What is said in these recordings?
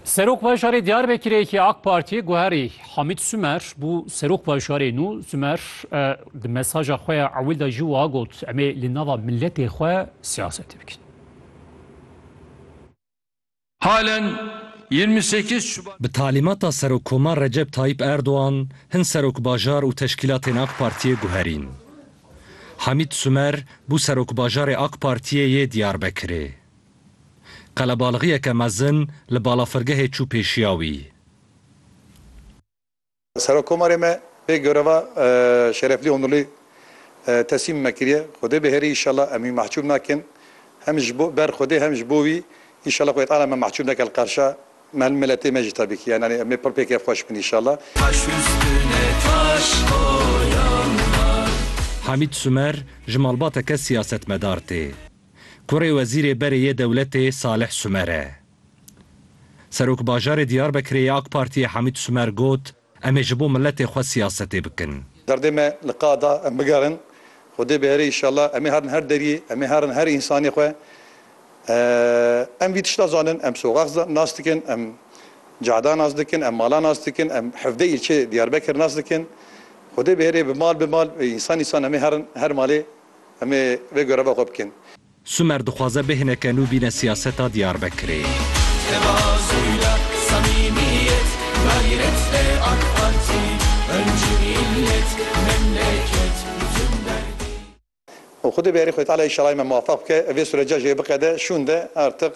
Serok Bajarê Diyarbekirê yekî AK Partiyê guherî Hamîd Sumer bû Serok Bajarê nû. Sumer di mesaja xwe ya ewil de jî wiha got, Em ê li nava miletê xwe siyasetê bikin. Halen yirmi sekiz Şubat. Bi talîmata Serokkomar Recep Tayîp Erdogan hin Serokbajar û teşkîlatên AK Partiyê guherîn. Hamîd Sumer bû Serokbajarê AK Partiyê yê Diyarbekirê. Qelebalixiyeke mezin li balafirgehê çû pêşiya wî. Serokkomarê me pê göreva Şereflî Onurlî teslîm me kiriye. Xwedê biherî înşallah em wî mehcûb nakin. Hem ji bo ber xwedê hem ji bo wî înşallah Xwedê Teala me mehcûb neke li qarşa me li miletê me jî tabîkî. Yan anî em ê pir pê kêfxweş bin înşallah. Hamîd Sumer ji malbateke siyasetmedar tê. Kurê wezîrê berê yê dewletê Salih Sumer e. Serokbajarê Diyarbekirê yê AK Partiyê Hamît Sumer got, Em ê ji bo miletê xwe siyasetê bikin. Derdê me li ka da em bigerin. Xwedê bihere înşallah. Em ê herin her deriyê. Em ê herin her însanê xwe. Em vî tişta zanin. Em soxax nas dikin. Em cada nas dikin. Em mala nas dikin. Em hevdeh îlçeyê Diyarbekir nas dikin. Xwedê bihere bi mal bi mal, bi însan însan em ê herin her malê. Em ê vê göreva xwe bikin. Sumer dixwaze bihêne ke nû bîne siyaseta Diyarbekirê. Tevazuyla samimiyet gayret e ak parti Önce millet memleket bütün derdi. Û xwedê bi herî xwê Tealeyê şalayê me muwefeq bike û vê sureca jê biqede şûnde artiq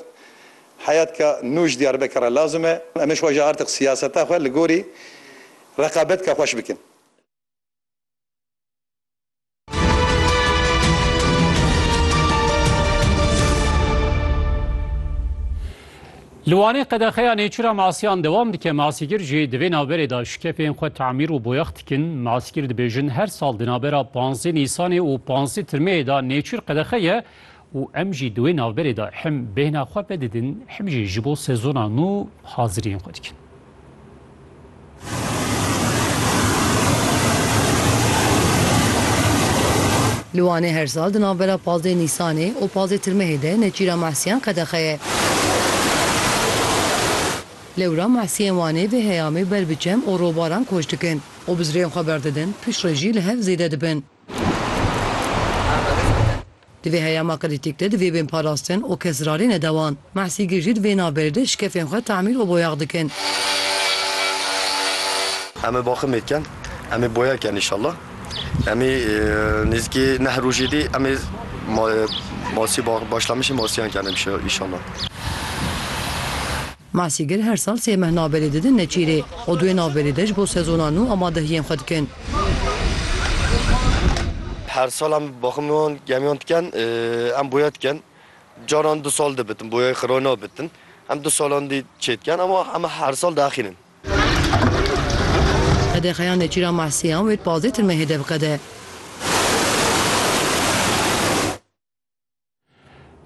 heyatka nû ji Diyarbekir re lazim e û em ê xwe jî artiq siyaseta xwe li gorî reqabetka xweş bikin. Li Wanê qedexeya nêçîra masîyan dewam dike. Masîgir jî di vê navberê de şikefên xwe tamîr û boyax dikin. Masîgir dibêjin her sal di navbera panzdeh Nîsanê û panzdeh Tirmeyê de nêçîr qedexe ye û em jî di wê navberê de him bêhna xwe vedidin him jî ji bo sezona nû haziriyên xwe dikin. Li Wanê her sal di navbera pazdeh Nîsanê û pazdeh Tirmehê de Nêçîra Mehsiyan qedexe ye. Lewra Mehsiyên Wanê vê heyamê ber bi çem û robaran koç dikin û bizrên xwe berdidin, piştre jî li hev zêde dibin. Di vê heyama krîtîk de divê bên parastin û kes rarê nede wan. Mehsîgîr jî di vê navberê de şikefên xwe temîl û boyax dikin. Em ê baximê ken, em ê boya ken înşallah. Em ê nêzîkî neh rojê dî em ê masî, başlamişê masiyan ken înşallah. Masîgir her sal sê meh navberê didin Neçîrê û duê navberê de ji bo sezona nû amadehiyên xwe dikin. Her sal em baximiyan gemiyan dikin, em boya dikin. Caran du sal dibitin, boyayê xira nabitin. Em du salan dî çê dikin ama em her sal diaxînin. Qedexeya Neçîra Mahsiyan wê di pazdeh tirmehê de biqede.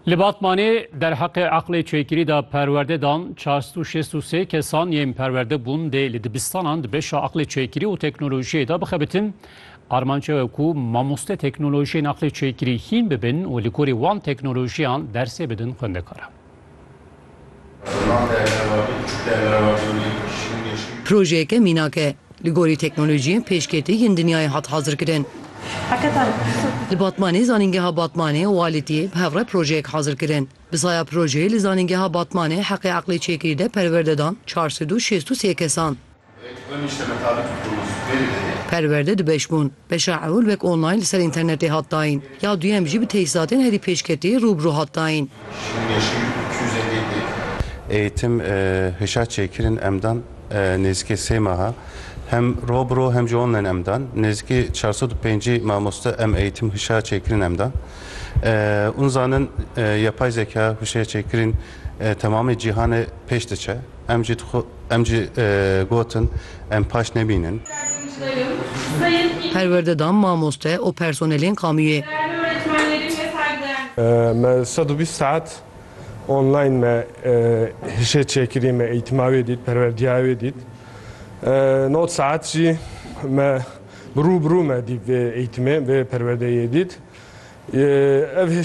Li Batmanê derheqê eqlê çêkirî de perwerde dan 463 kesan yên perwerde bûn dê li dibistanan di beşa eqlê çêkirî û teknolojiyê de bixebitin. Armanc ew e ku mamoste teknolojiyên eqlê çêkirî hîn bibin û li gorî wan teknolojiyan dersê bidin xwendekaran. Projeyeke mînak e. Li gorî teknolojiyên pêşketî yên dinyayê hat hazirkirin. Li Batmanê Zanîngeha Batmanê û Alitiyê bi hevre projeyek hazir kirin. Bi saya projeyê li Zanîngeha Batmanê heqê eqlê çêkirî de perwerde dan çar sed û şêst û sê kesan. Perwerde du beş bûn, beşa ewil wek online li ser înternetê hat dayîn, ya duyem jî bi tejîzatên herî pêşketî rû bi rû hat dayîn. Eğîtim hişa çêkirin em dan nêzîkê sê meha, hem ro bi ro hem jî online em dan, nêzîkî çar sed û pêncî mamoste em eğîtim hişa çêkirin em dan. Hûn zanin yapay zeka huşeya çêkirîn temamê cîhanê pêş diçe. Em jî dixw em jî gotin em paş nebînin. Perwerde dan mamoste û personelên kamûyê. Me sed û bîst saet online me hişê çêkirî me eîtima wê dît perwerdiya wê dît nod saet jî me bi rû bi rû me dît vê eîtimê vê perwerdeyê dît ev hişê